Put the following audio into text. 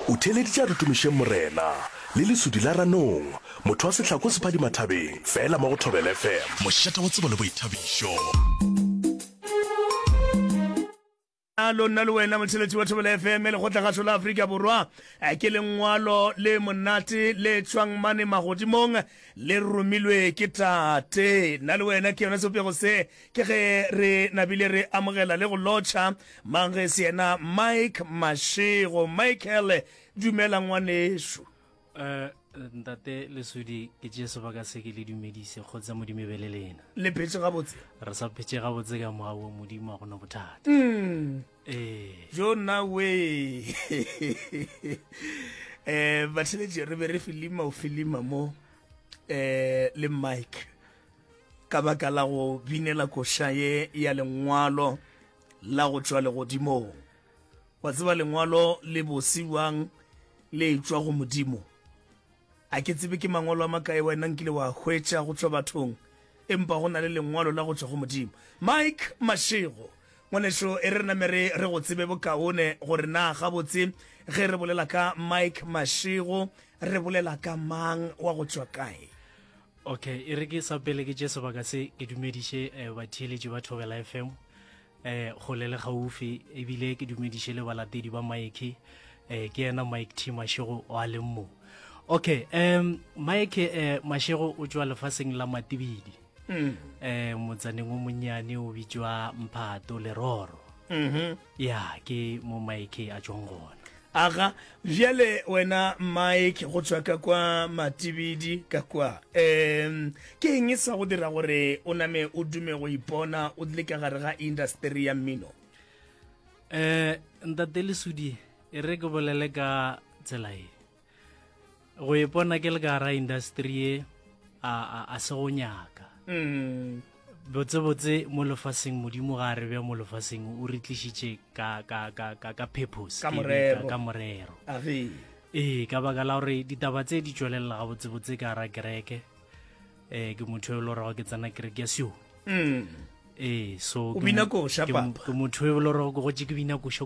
O theeleditše a re tumišeng Morena, le lesudi la ranong, motho wa sehlako o se phadima thabeng, fela mo go Thobela FM. Mošate wa tsebo le boithabišo. Bjalo nna le wena motheletši wa Thobela FM lekgotlagašo la Afrika Borwa eh, ke lengwalo le monate le tšwang mane magodimong le romilwe ke tate nna le wena ke yona sepego se Ke ge re nabile re amogela le go lotšha mang ge se yena Mike Mashego. Michael, dumela ngwanešu. Eh, ntate lesodi ke tšee sebaka se ke le dumedise kgotsa modimo e be le lena le phetse gabotse re sa phetse gabotse ka moa wo modimo a gona bothata mm. ee jo nna we um batheletše re be re filima o filima mo um le mike Ka baka la go binela koša ye ya lengwalo la go tšwa legodimong, wa tseba lengwalo le bose bjang le tšwa go Modimo. A ke tsebe ke mangwalo a makae wena nkile wa hwetša go tšwa bathong, empa go na le lengwalo la go tšwa go Modimo. Mike Mashego, ngwanešu, e re re name re re go tsebe bokaone gore na gabotse ge re bolela ka Mike Mashego re bolela ka mang, wa go tšwa kae? Ok, e re ke sa pele ke tše sebaka se ke dumediše eh, batheeletši ba Thobela FM eh, kgole le gaufi ebile ke dumediše le balatedi ba Mike eh, ke yena Mike T Mashego wa leng mo. Ok, um, Mike eh, Mashego o tšwa lefaseng la Matibidi mm. eh, motsaneng o monnyane o bitšwa Mphato Leroro. Mm -hmm. Ya, ke mo Mike a tšong gona. Aga, bjale wena Mike, go tšwa ka kwa Matibidi, ka kwa, um, ke eng e sa go dira gore o name o dume go ipona o dile ka gare ga industeri ya mmino? Um, Ntate Lesudi, e re ke bolele ka tsela e. go ipona ke le ka gara industry ye a se go nyaka mm. botsebotse mo lefaseng modimo ga a re bja mo lefaseng o re tlišitše ka purpose ka morero ee ka baka la gore ditaba tse di tšwelelela ga botsebotse ka gara kereke um ke motho yo e le gorego ke tsena kereke ya sio mm. ee so ke motho yo e le gorego ke gotse ke bina koša